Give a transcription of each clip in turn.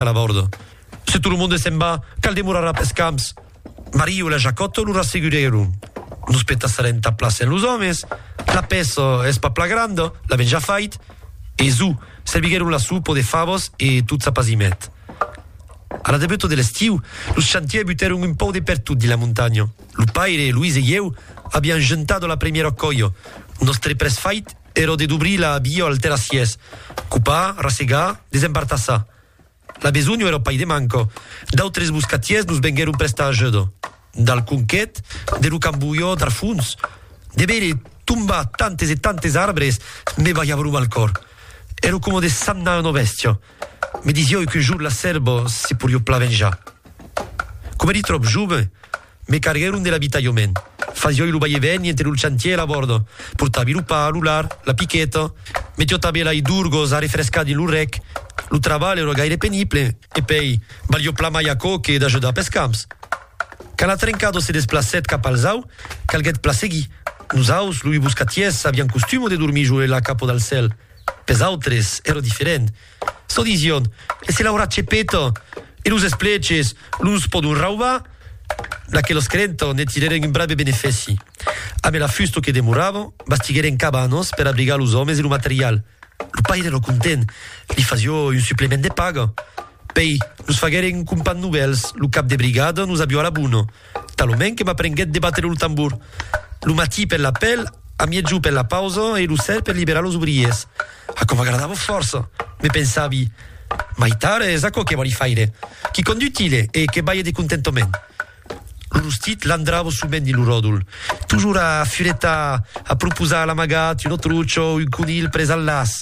a la bòrda. Se tot lo monde se'n va, cal demorarà pes camps. Mario e la Jacòta lo rassegurèron. Nos petassarà entà pla sen los òmes. La pèça es pas pla granda, l'avèn ja fait. E zo, serviguèron la sopa de favas e tot s'apasimèt. A la debuta de l'estiu, los chantiers butèron un pauc de pertot dins la montanha. Lo paire, Luis e ieu avián juntat a la premièra còia. Nos tre pres fait, Ero de dobrir la biò al terrassièrs, copar, rassegar, desembartassar. La besonho ero pas de manco. D'autres boscatièrs nos venguèron prestar ajuda. Dal conquet, de lo cambolhò dar fons, de veire tombar tantes e tantes arbres me balhava lo mal còr. Ero coma de samnar una bèstia. Me disiò qu'un jorn la sèrva se porió plan venjar. Coma eri tròp jove, Me carguèron de l'abitalhament. Fasioi lo vai e vèni entre lo chantier e la bòrda. Portavi lo pa, lo lard, la piqueta. Me tiotavi lai d'urgos a refrescar dins lo rec. Lo trabalh èra gaire penible. E pei, valió plan mai aquò que d'ajudar pes camps. Quand la trencada se desplacèt cap al zau, calguèt plan seguir. Nos aus, loi boscatiers, avián costuma de dormir jo e la capa dal cèl. Pes autres, èra diferent. Çò disión, se l'aurà chepeta, e los espleches los pòdon raubar. D'aqueles credentas ne tirèren un brave benefèci. Amé la fusta que demorava, bastiguèren cabanas per abrigar los òmes e lo material. Lo paire èra content, li fasió un suplement de paga. Pèi, nos faguèren un compan novèls, lo cap de brigada nos avió a la bona. Talonment que m'aprenguèt de batre lo tambor. Lo matí per l'apèl, a miègjor per la pausa e lo ser per liberar los obriers. Aquò m'agradava fòrça. Me pensavi, Mai tard es aquò que vòli faire. Quicòm d'utile e que balhe de contentament. Lo rostit landrava sovent dins lo ròdol, tojor a furetar, a proposar a l'amagat un otruch o un conilh pres al laç.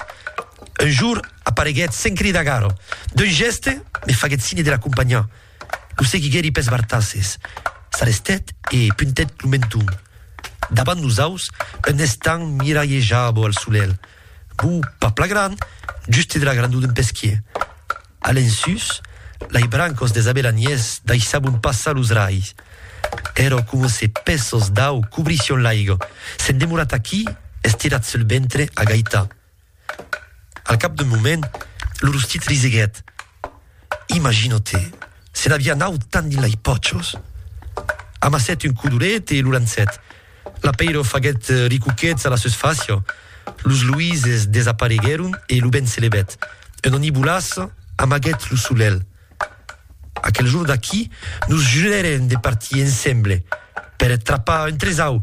Un jorn apareguèt sens cridar gara. D'un gèste, me faguèt signe de l'acompanhar. Lo seguiguèri pes bartasses, s'arrestèt e puntèt lo menton davant nosaus un estant miralhejabo al solelh, bo pas pla gran, juste de la grandor d'un pesquier. A l'ensús, lai brancos des abelaniers daissabon passar los raigs. Èro coma se pèços d'au cobrission l'aiga, s'en demorat aquí, estirat sul ventre, agaitat. Al cap d'un moment, lo rostit riseguèt. Imagina-te, se n'aviá naut tant dins lei pòchos! Amassèt un codoret e lo lançèt. L'apeiro faguèt ricoquets a la susfàcia, los luises desapareguèron e lo vent se levèt. Un onibolàs amaguèt lo solelh. Aquel jorn d'aquí, nos jurèrem de partir ensemble per trapar un tresau!